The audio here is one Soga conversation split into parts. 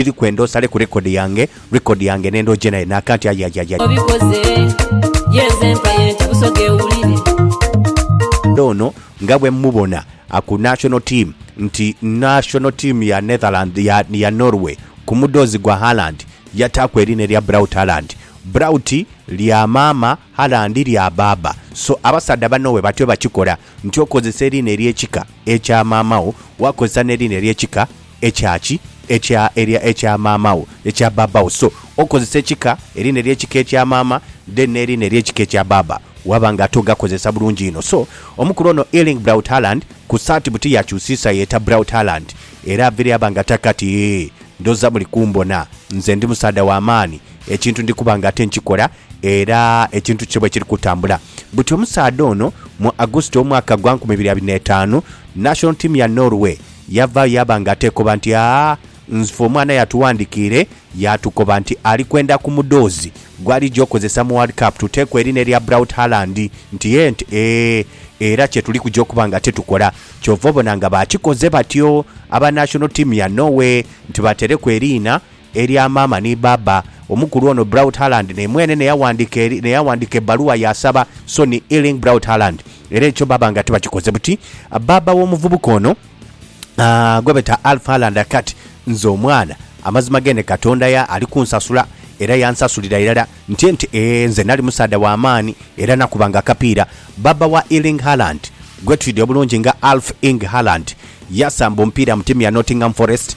Biri kwenda osale ku record yange Record yange nenda oje nayo na kanti ayayayay. Obikoze yenze empaye nti Busoga ewulire. Ono nga bwemumubona ku national team nti national team ya Netherland ya ya Norway ku mudhoozi gwa Haaland yataaku eriina erya Braut Haaland. Braut lya maama, Haaland lya baaba. So abasaadha banno bwe batyo bakikola nti okozesa eriina ery'ekika ekya maama wo, wakozesa n'eriina ery'ekika. Ekya ki? Ekya erya ekya maama wo, ekya baaba wo. So, okozesa ekika erina ery'ekika ekya maama, then n'erina ery'ekika ekya baaba, waba nga ate ogakozesa bulungi inho. So, omukulu ono Erling Braut Haaland, ku saati buti yakyusiisa yeeta Braut Haaland, era avire aba nga taka ati, Eeh, ndhoza muli kumbona. Nze ndi musaadha wa maani. Ekintu ndi kuba nga ate nkikola, era ekintu kye bwekiri kutambula. Buti omusaadha ono, mu August ow'omwaka gwa nkumi ibiri abiri n'etaanu, national team ya Norway, Yavaayo yaaba nga ateekoba nti, Aa, nzfe omwana yatuwandikiire yaatukoba nti ali kwenda ku mudhoozi gw'alija okozesa mu World Cup tuteeku erina erya Braut Haaland nti yee nti ee, era kye tuli kuja okuba nga titukola. Ky'ova obona nga baakikoze batyo aba national team ya Norway nti batereku eriina Elya maama ni baaba. Omukulu ono Braut Haaland ne mwene n'eyaghandika ebbaluwa yaasaba Sonny Erling Braut Haaland era ekyo baaba nga tibakikoze buti. Baaba w'omuvubuka ono gwebeeta Alf Haaland akati, Nze omwana, amazima gene Katonda ya ali kunsasula era yansasulira irala nti nti ee nze nali musaadha wa maani era nakubanga akapiira. Baaba wa Erling Haaland gwetwidha obulungi nga Alf Ing Haaland yasamba omupiira mu tiimu ya Nottingham Forest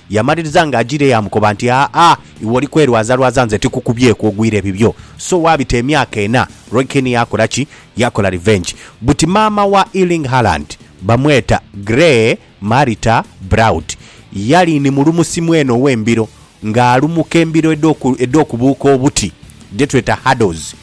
Yamaliriza nga ajiira eyo amukoba nti, Aa, iwe oli kwerwazalwaza nze tikukubyeku ogwire ebibyo. So waabita emyaka ena, Roy Keane yaakola ki? Yaakola revenge. Buti maama wa Erling Haaland bamweta Grey Marita Braud. Yali ni mulumusi mwene ow'embiro ng'alumuka embiro edh'oku, edh'okubuuka obuti, dhe tweta hurdles.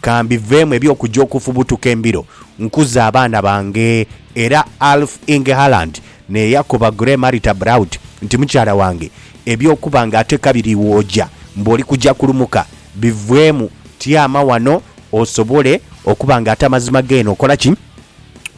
Ka mbiveemu eby'okuja okufubutuka embiro, nkuze abaana bange. Era Alf Inge Haaland naye yakoba Gray Marita Braut nti, Mukyala wange, eby'okuba nga ate kabiri iwe oja mbu oli kuja kulumuka, biveemu. Tyama wano osobole okuba nga ate amazima geene okola ki?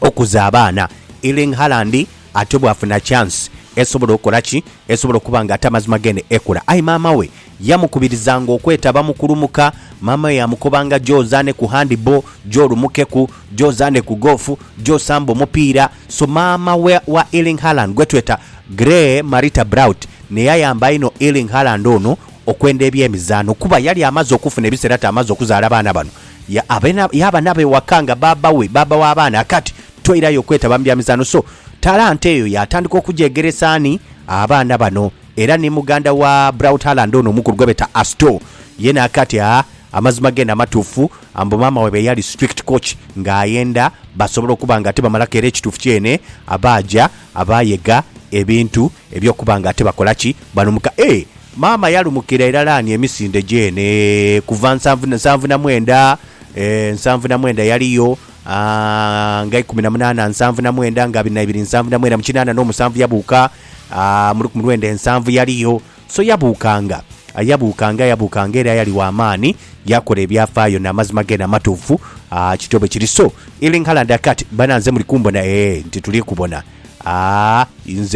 Okuza abaana. Erling Haaland Ate bwafuna chance esobola okola ki? Esobola okuba nga ate amazima gene ekula. Aye maama we yamukubirizanga okwetaba mu kulumuka. Maama we yamukobanga gya ozaane ku handball, gya olumukeku, gya ozaane ku golf, gya osambe omupiira. So maama wa wa Erling Haaland gwetweta Grey Marita Braut naye ayamba inho Erling Haaland ono okwenda ebyemizaano kuba yali amaze okufuna ebiseera ate amaze okuzaala abaana bano ya abena yaba nabo ewaka nga baaba we, baaba w'abaana. Kati. Twairayo okwetaba mu bya mizaanho so talanta eyo yaatandika okugyegeresa ani? Abaana bano. Era ni muganda wa Braut Haaland ono omukulu gwe beeta Astor, ye naaka ati, Aa, amazima geene amatuufu, mbu maama waibwe yali strict coach ng'ayenda basobole okuba nga tibamalaku era ekituufu kyeene abaaja abaayega ebintu eby'okuba nga tibakola ki? Balumuka. Ee, maama yalumukira irala ani emisinde gyeene kuva nsanvu, nsanvu na mwenda? Ee, nsanvu na mwenda yaliyo. nga ikumi na munaana nsanvu na mwenda nga abiri na ibiri nsanvu na mwenda mu kinaana n'omusanvu yabuuka mu lukumi lwenda ensanvu yaliyo so yabuukanga yabuukanga yabuukanga era yali wa maani yakola ebyafaayo n'amazima geena amatuufu aa kityo bwe kiri so ili nkala ndakati bana nze muli kumbona ee nti tuli kubona aa nze